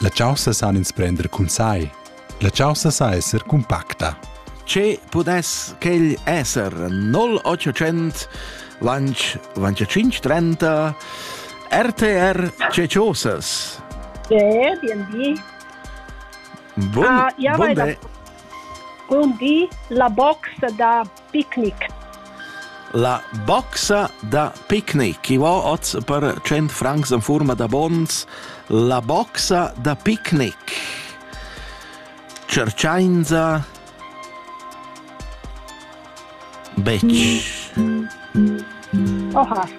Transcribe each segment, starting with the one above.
La chaussa san ins prender cun sai. La chaussa sa esser cumpacta. Ce pudess quel esser? 0800 lanch lanch 530 RTR Ceciosas. Ja, bienvenue. Bun, uh, ja, bun, bun di. La box da Picnic. La boxa da picnic, i va oz per 100 francs en forma da bons, la boxa da picnic. Cercainza Betsch. Oha.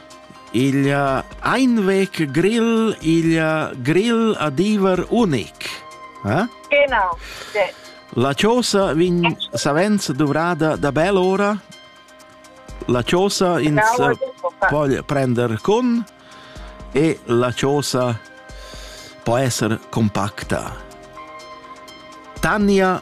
Il einvec grill, il grill a diver unic. Eh? Genau. Sì. La chiosa vegn savens dovrada da bel ora. La chiosa ins genau, può prendere con e la chiosa può essere compacta. Tania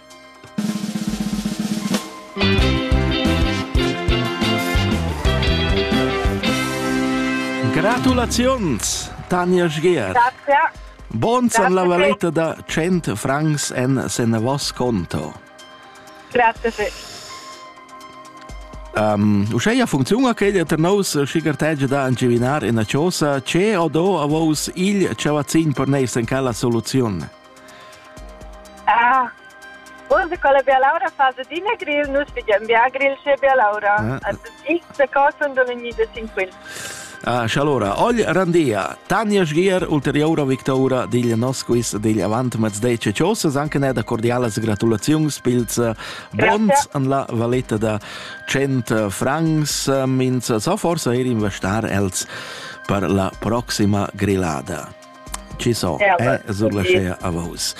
Gratulaziuns, Tanja Schgert. Grazie. Buon san la valetta da 100 francs en senavos conto. Grazie. Sì. Um, uscheia funziuna che der nous schigertege da angivinar in a chosa, ce o do a vos il cavazzin per neis in cala soluzione. Ah, uns e quella bialaura fa adina grill, nus figiam bia grill sche bialaura. Ah. X de cosa und ogni de sin quel. Ah, allora, oggi randia, Tanja Sgier, ulteriora victoria digl nos quiz digl avant mezdece cios, anche ne da cordialas gratulazions pils eh, bons an la valetta da 100 francs, mins sa forse er investar els per la proxima grillada. Chi so, eh, surlascea a vos.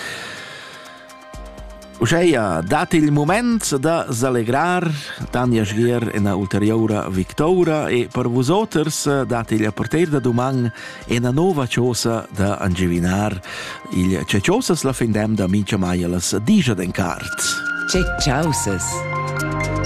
Uscheia, dat il moment da s'allegrar Tanja Schgier ena ulterioura victoura e per vusoters dat il porter da duman ena nova chosa da angivinar il ce chosas la fin dem da mincha mai las digia den cart. Ce chausas!